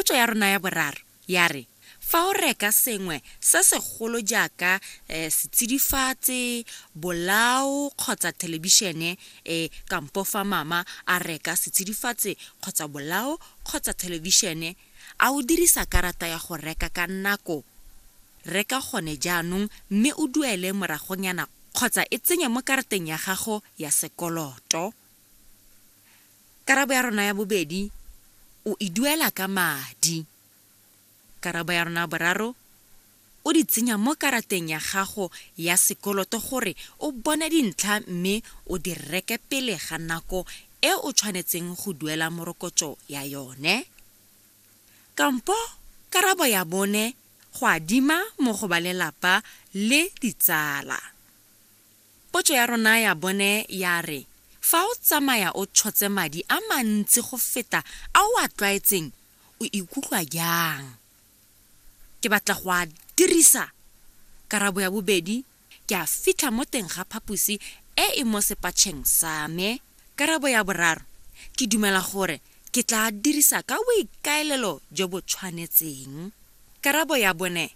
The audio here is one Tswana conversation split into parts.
Potso ya rona ya boraro ya re, fa o reka sengwe se segolo jaaka setsidifatsi, bolao kgotsa thelebišene, e, kampo fa mama a reka setsidifatsi kgotsa bolao kgotsa thelebišene, a o dirisa karata ya go reka ka nako? Reka gone jaanong mme o duele moragonyana kgotsa e tsenye mo karateng ya gago ya sekoloto. Karabo ya rona ya bobedi, O e duela ka madi. Karabo ya rona ya boraro, O di tsenya mo karateng ya gago ya sekoloto gore o bone dintlha mme o di reke pele ga nako e o tshwanetseng go duela morokotso ya yone. Kampo karabo ya bone, Go adima mo go ba lelapa le ditsala. Potso ya rona ya bone ya re, Fa o tsamaya o tshotse madi a mantsi go feta a o a tlwaetseng, o ikutlwa jang? Ke batla go a dirisa! Karabo ya bobedi, Ke a fitlha mo teng ga phaposi e e mo sepatšheng sa me. Karabo ya boraro, Ke dumela gore ke tla a dirisa ka boikaelelo jo bo tshwanetseng. Karabo ya bone,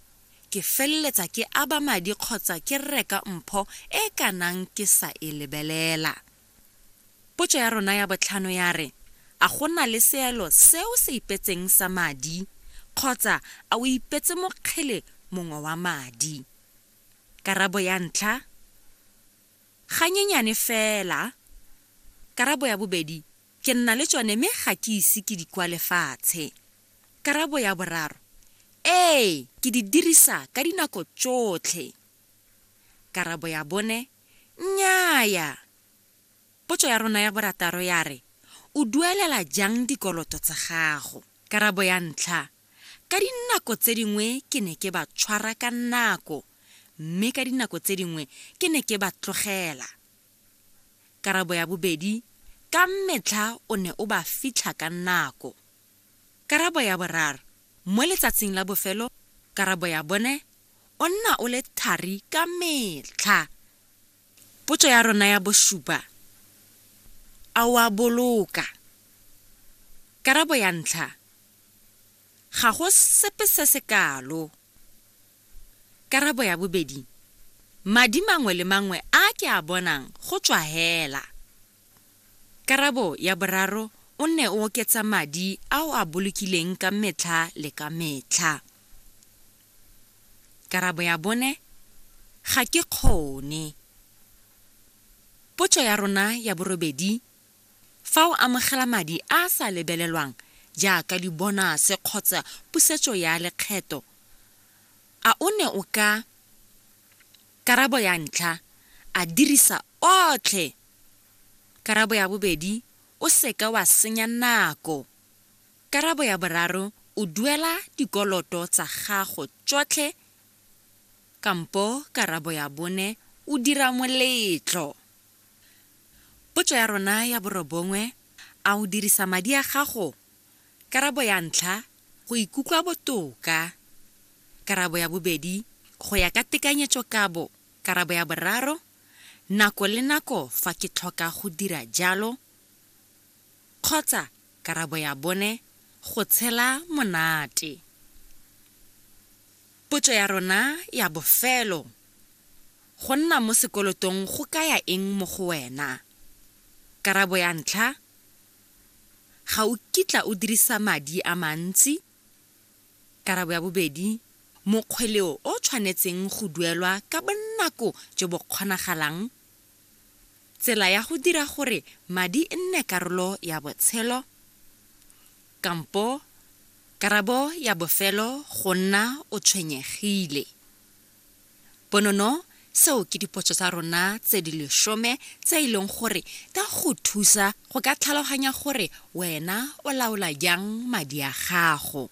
ke feleletsa ke aba madi kgotsa ke reka mpho e e ka nang ke sa e lebelela. Potso ya rona ya botlhano ya re, A go na le seelo se o se ipetseng sa madi, kgotsa a o ipetse mokgele mongwe wa madi? Karabo ya ntlha, Ganyenyane fela. Karabo ya bobedi, Ke nna le tsone mme ga ke ise ke di kwale fatshe. Karabo ya boraro, Ee, ke di dirisa ka dinako tsotlhe. Karabo ya bone, Nnyaya. Potso ya rona ya borataro ya re, O duelela jang dikoloto tsa gago? Karabo ya ntlha, Ka dinako tse dingwe ke ne ke ba tshwara ka nako mme ka dinako tse dingwe ke ne ke ba tlogela. Karabo ya bobedi, Ka metlha o ne o ba fitlha ka nako. Karabo ya boraro, Mo letsatsing la bofelo karabo ya bone o nna o le thari ka metlha. Potso ya rona ya bosupa, A o a boloka? Karabo ya ntlha, Ga go sepe se se kalo. Karabo ya bobedi, Madi mangwe le mangwe a ke a bonang go tswa hela. Karabo ya boraro, O nne o oketsa madi a o a bolokileng ka metlha le ka metlha. Karabo ya bone, Ga ke kgone. Potso ya rona ya borobedi, Fa o amogela madi a a sa lebelelwang jaaka dibonase kgotsa pusetso ya lekgetho, a o ne o ka Karabo ya ntlha, A dirisa otlhe Karabo ya bobedi, O se ka wa senya nako Karabo ya boraro, O duela dikoloto tsa gago tsotlhe kampo Karabo ya bone, O dira moletlo. Potso ya rona ya borobongwe, A o dirisa madi a gago? Karabo ya ntlha, Go ikutlwa botoka. Karabo ya bobedi, Go ya ka tekanyetsokabo. Karabo ya boraro, Nako le nako fa ke tlhoka go dira jalo. Kgotsa karabo ya bone, Go tshela monate. Potso ya rona ya bofelo, Go nna mo sekolotong go kaya eng mo go wena? Karabo ya ntlha, Ga o kitla o dirisa madi a mantsi. Karabo ya bobedi, Mokgweleo o tshwanetseng go duelwa ka bonako jo bo kgonagalang. Tsela ya go dira gore madi e nne karolo ya botshelo, kampo karabo ya bofelo go nna o tshwenyegile. Bonono seo ke dipotso tsa rona tse di lesome tse e leng gore di a go thusa go ka tlhaloganya gore wena o laola jang madi a gago.